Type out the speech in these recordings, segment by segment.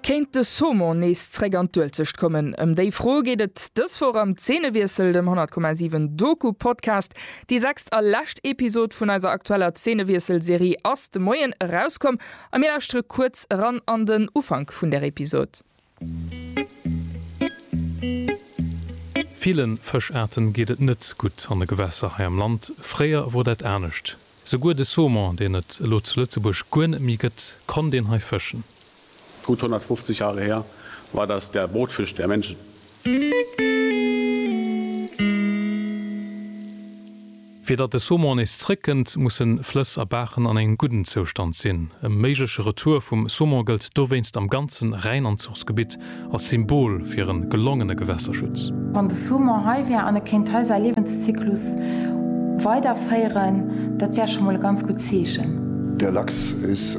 Kéint de Saumon nees zréck an d'Uelzecht kommen? Ëm déi Fro geet et dës Woch am Zeenewiessel, dem 10,7 Doku-Podcast. Déi sechst a lescht Episod vun eiser aktueller Zeenewiessel-Serie ass de Moien erauskomm a mir lauschtere kuerz eran an den Ufank vun där Episod. Villen Fëschaarten geet et net gutt an de Gewässer hei am Land. Fréier wor dat anescht. Souguer de Saumon, deen et elo zu Lëtzebuerg guer net méi gëtt, konnt een hei fëschen. Gutt 150 Jahre her war das der Brotfisch der Menschen. Fir datt de Saumon nees zréckkënnt, musse Flëss a Baachen an engem gudden Zoustand sinn. E méigleche Retour vum Saumon gëllt dowéinst am ganzen Rhäinanzuchsgebitt als Symbol fir e gelongene Gewässerschutz. Wann de Saumon hei wär an e kéint hei säi Liewenszyklus weiderféieren, dat wär scho mol e ganz gutt Zeechen. Der Lachs is.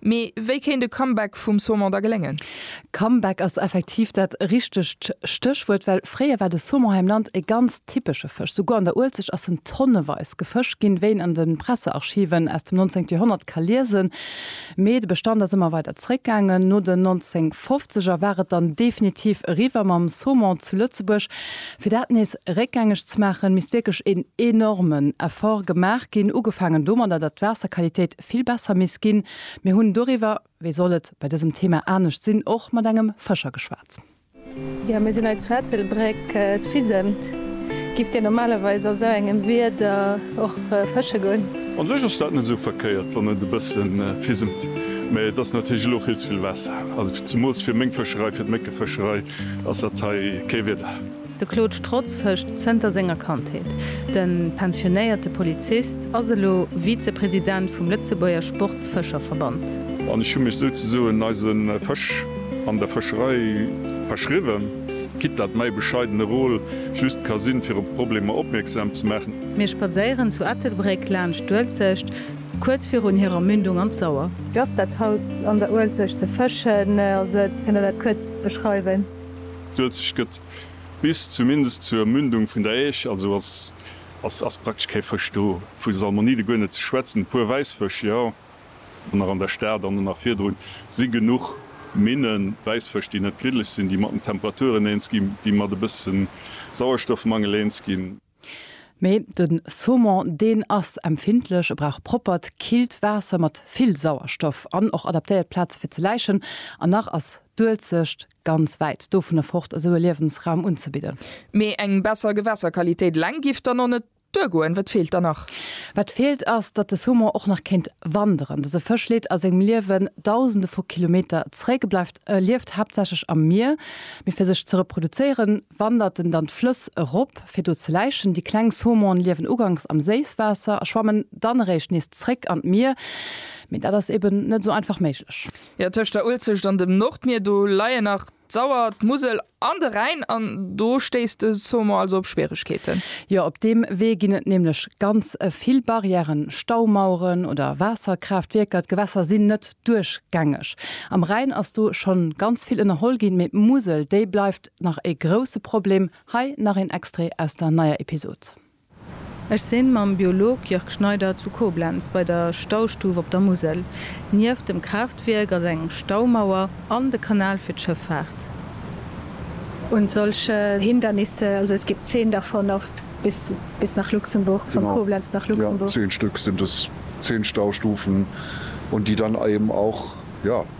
Mee wéi kéint e Comeback vum Saumon da geléngen? Comeback ass effektiv dat richtegt Stéchwuert, well fréier war de Saumon hei am Land e ganz typesche Fësch. Souguer an der Uelzecht ass en tonneweis gefëscht ginn, wéi een an de Pressearchiven aus dem 19. Joerhonnert ka liesen. Mee de Bestand ass ëmmer weider zeréckgaangen. No den 1950 er war et dann definitiv eriwwer mam Saumon zu Lëtzebuerg. Fir dat nees réckgängeg ze maachen, misst wierklech een enormen Effort gemaach ginn, ugefaangen domadder, datt d'Waasserqualitéit, Prinzip vill besser misst ginn. Mir hunn doriwwer, wéi soll et bei dësem Thema anescht sinn, och mat engem Fëscher geschwat. Jo, mir sinn hei zu Ettelbréck, et fisemt. Gifft Dir normalerweis a sou engem Wieder och fësche goen? An sech ass dat net esou verkéiert, wann et e bësse fisemt, mä et ass natierlech elo vill ze vill Waasser. Also zemools fir meng Fëscherei, fir d'Méckefëscherei ass dat hei kee Wieder. De Claude Strotz fëscht zënter senger Kandheet. De pensionéierte Polizist ass elo Vizepresident vum Lëtzebuerger Sportsfëscherverband. An ech hu mech souzesoen eise Fësch an der Fëscherei verschriwwen, quitte dat mäi bescheidene Rôle just ka sinn, fir op Problemer opmierksam ze maachen. Mir spadséieren zu Ettelbréck laanscht d'Uelzecht, kuerz virun hirer Mündung an d'Sauer. Wéi ass dat haut an der Uelzecht ze fëschen? Elo dat kuerz beschreiwen. D'Uelzecht gëtt bis zumindest zur Mündung vun der Äisch, also ass praktesch kee Fësch do, vu Salmonide guer net ze schwätzen. E puer Wäissfësch, jo, an nach an der Stad an nach virdrun si genuch Minnen, Wäissfësch, déi net griddlech sinn, déi mat den Temperaturen eens ginn, déi mat e bësse Sauerstoffmangel eens ginn. Mee den Saumon deen ass empfindlech, e brauch proppert, killt Waasser mat vill Sauerstoff an och adaptéiert Plaze fir ze läichen. An nach ass d'Uelzecht ganz wäit dovunner fort esou e Liewensraum unzebidden. Mee eng besser Gewässerqualitéit eleng giff dann och net duergoen. Wat feelt dann nach? Wat feelt ass, datt de Saumon och nach kéint wanderen. Dëse Fësch leet a sengem Liewen dausende vu Kilometer zréck, e bleift, e lieft haaptsächlech am Mier. Mee fir sech ze reproduzéieren, wandert en dann d'Flëss erop, fir do ze läichen. Déi kleng Saumone liewen uganks am Séisswaasser a schwammen dann eréischt nees zréck an d'Mier. Mee dat ass eben net esou einfach méiglech. Jo, tëscht der Uelzecht an dem Nordmier, do leien nach d'Sauer, d'Musel an de Rhäin an do stéisst de Saumon also op Schwieregkeeten. Jo, op deem Wee ginn et nämlech ganz vill Barrièren, Staumaueren oder Waasserkraaftwierker. D'Gewässer sinn net duerchgängeg. Am Rhäin ass do schonn ganz vill ënnerholl ginn, mee d'Musel, déi bleift Nach ee grousse Problem. Hei nach een Extrait aus der neier Episod. Ech sinn mam Biolog Jörg Schneider zu Koblenz bei der Staustuf op der Musel. Nieft dem Kraaftwierk ass eng Staumauer an de Kanal fir d'Schëffaart. Und solche Hindernisse, also es gibt zehn davon auf bis bis nach Luxemburg, von Koblenz nach Luxemburg. Genau, ja, zehn Stück sind es, zehn Staustufen und die dann eben auch, ja.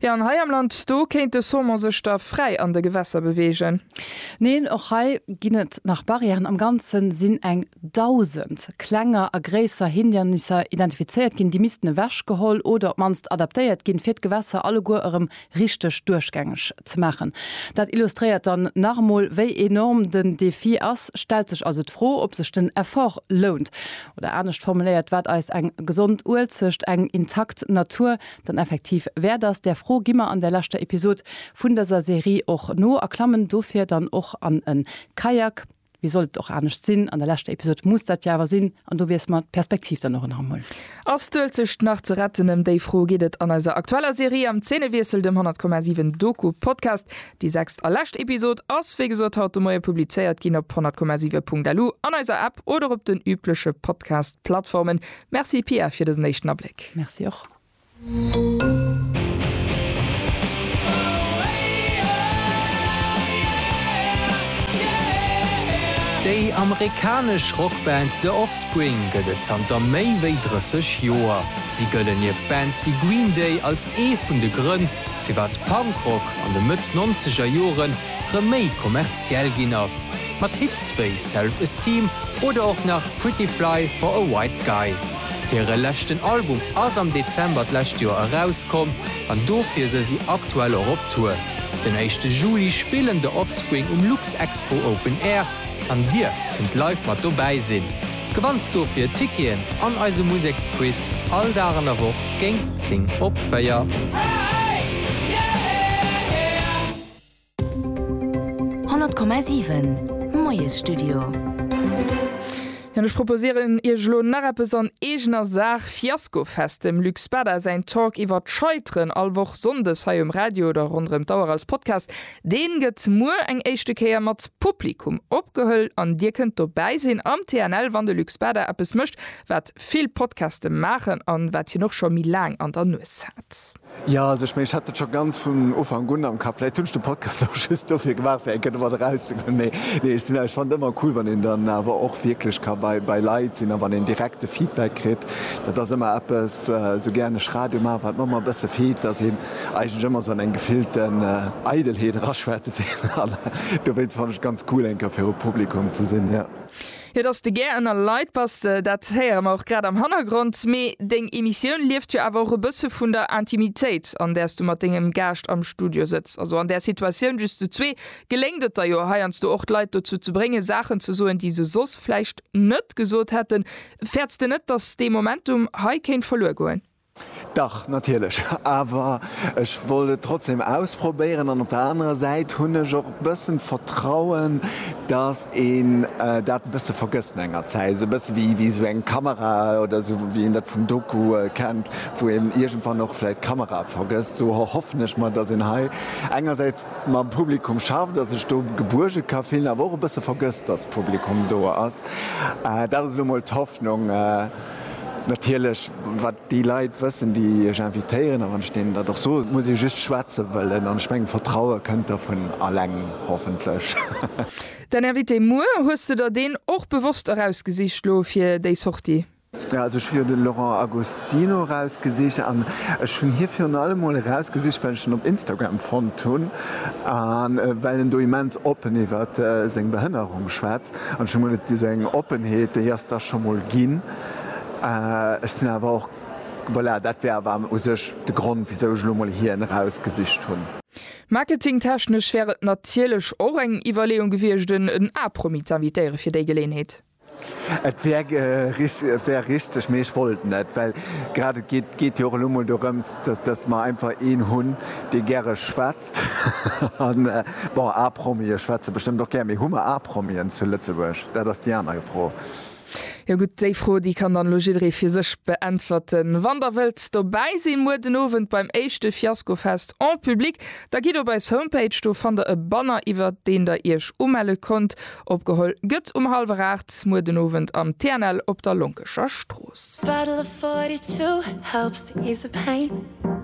Jo, an hei am Land, do kéint de Saumon sech da fräi an de Gewässer beweegen. Neen, och hei ginn et nach Barrièren. Am Ganze sinn eng 1.000 klenger a gréisser Hindernisser identifizéiert ginn. Déi missten ewechgeholl oder op d'mannst adaptéiert ginn, fir d'Gewässer alleguer erëm richteg duerchgängeg ze maachen. Dat illustréiert dann nach emol, wéi enorm den Defi ass. Stellt sech also d'Fro, ob sech den Effort lount. Oder anescht formuléiert, wat eis eng gesond Uelzecht, eng intakt Natur dann effektiv wäert ass. Där Fro gi mer an der leschter Episod vun dëser Serie och no a klammen dofir dann och an en Kajak. Wéi sollt et och anescht sinn, an der leschter Episod muss dat jo awer sinn an do wiesse mer d'Perspektiv dann och en Hammel. Ass d'Uelzecht nach ze retten? Ëm déi Fro geet et an eiser aktueller Serie Am Zeenewiessel, dem 100,7 Doku-Podcast. Déi sechst a lescht Episod ass wéi gesot haut de Moie publizéiert ginn op 100,7.lu, an eiser App oder op den übleche Podcast-Plattformen. Merci Pia fir dësen éischten Abléck. Merci och. Déi amerikanesch Rockband The Offspring gëtt et zanter méi wéi 30 Joer. Si gëllen nieft Bands wéi Green Day als ee vun de Grënn, firwat Punkrock an de Mëtt-Nonzeger Jore rëm méi kommerziell ginn ass, mat Hits wéi Self Esteem oder och nach Pretty Fly for a White Guy. Hire leschten Album ass am Dezember d'lescht Joer erauskomm an dofir se si aktuell och op Tour. Den éischte Juli spillen The Offspring um Luxexpo Open Air an Dir kënnt live mat dobäi sinn. Gewannt dofir Ticketen an eise Museksquiz all Dag an der Woch géint 10 op 4. 100,7 Moiesstudio. An ech proposieren Iech elo nach eppes an eegener Saach, Fiaskofest, dem Luc Spada säin Talk iwwer d'Scheiteren, all Woch sonndes hei um Radio oder ronderëm d'Auer als Podcast. Deen gëtt muer eng éischte Kéier mat Publikum opgehëll an Dir kënnt dobäi sinn am TNL, wann de Luc Spada eppes mécht, wat vill Podcaste maachen an wat hien och scho méi laang an der Nues hat. Jo, also ech mengen, ech hat et scho ganz vun Ufank un am Kapp. Vläicht hunn ech de Podcast och just dofir gemaach, fir eng Kéier domat erauszegoen. Mee nee, ech sinn awer, ech fannen et ëmmer cool, wann een dann awer och wierklech ka bei, bei Leit sinn a wann een direkt de Feedback kritt. Dat ass ëmmer eppes, esou gär ech Radio maachen, wat mer ëmmer e bësse feelt, dass een eigentlech ëmmer esou an eng gefillten Eidelheet eraschwätzt. Dowéinst fannen ech et ganz cool, eng Kéier viru Publikum ze sinn, jo. Jo, dass de gär ënner Leit bass, dat héiere mer och grad am Hannergrond. Mee deng Emissioun lieft jo awer och e bësse vun der Intimitéit, an där s du mat dengem Gaascht am Studio sëtz. Also an där Situatioun just zu zwee geléngt et der jo heiansdo och, d'Leit dozou ze bréngen, Saachen ze soen, déi se soss vläicht net gesot hätten. Fäerts de net, dass dee Momentum hei kéint verluer goen? Dach, natierlech, awer ech wollt et trotzdem ausprobéieren an op der anerer Säit hunn ech och e bëssen d'Vertrauen, dass een dat e bësse vergësst no enger Zäit, esou e bësse wéi esou eng Kamera oder esou wéi een dat vum Doku kennt, wou een iergendwann och vläicht d'Kamera vergësst. Sou erhoffen ech mer, dass een hei engersäits mam Publikum schafft a sech do gebuerge ka fillen, awer och e bësse vergësst, dass d'Publikum do ass. Dat ass elo mol d'Hoffnung. Natierlech, wat déi Leit wëssen, déi Iech invitéieren, a wann ech deenen dat och soen, et muss ee just schwätze wëllen, an ech mengen, Vertraue kënnt da vun alleng, hoffentlech. Däin Invité muer, hues de der deen och bewosst erausgesicht lo fir déi Sortie? Jo, also ech hu jo de Laurent Agostino erausgesicht, an ech hunn hie virun allem emol erausgesicht, well ech en op Instagram fonnt hunn, a well en do immens oppen iwwert seng Behënnerung schwätz, An ech hu mol et esou eng Oppenheet, déi ass da scho mol ginn. Ech sinn awer och, voilà, dat war awer u sech de Grond, wisou ech elo mol hien erausgesicht hunn. Marketingtechnesch wär et natierlech och eng Iwwerleeung gewiescht, en A-Promi z'invitéieren fir déi Geleeënheet. Et wär, et wär richteg, mee ech wollt net, well grad et geet, geet jo och elo mol dorëms, dass, dass mer einfach een hunn, dee gäre schwätzt. Bon, A-Promie schwätze bestëmmt och gär, mee hu mer A-Promien zu Lëtzebuerg? Dat ass déi aner Fro. Jo gutt, déi Fro, déi kann dann elo jidderee fir sech beäntwerten. Wann der wëllt dobäi sinn, muer den Owend beim éischte Fiaskofest en public, da gitt op eis Homepage, do fannt der e Banner iwwer deen der iech umelle konnt. Opgeholl gëtt um hallwer aacht muer den Owend am TNL op der Lonkescher Strooss.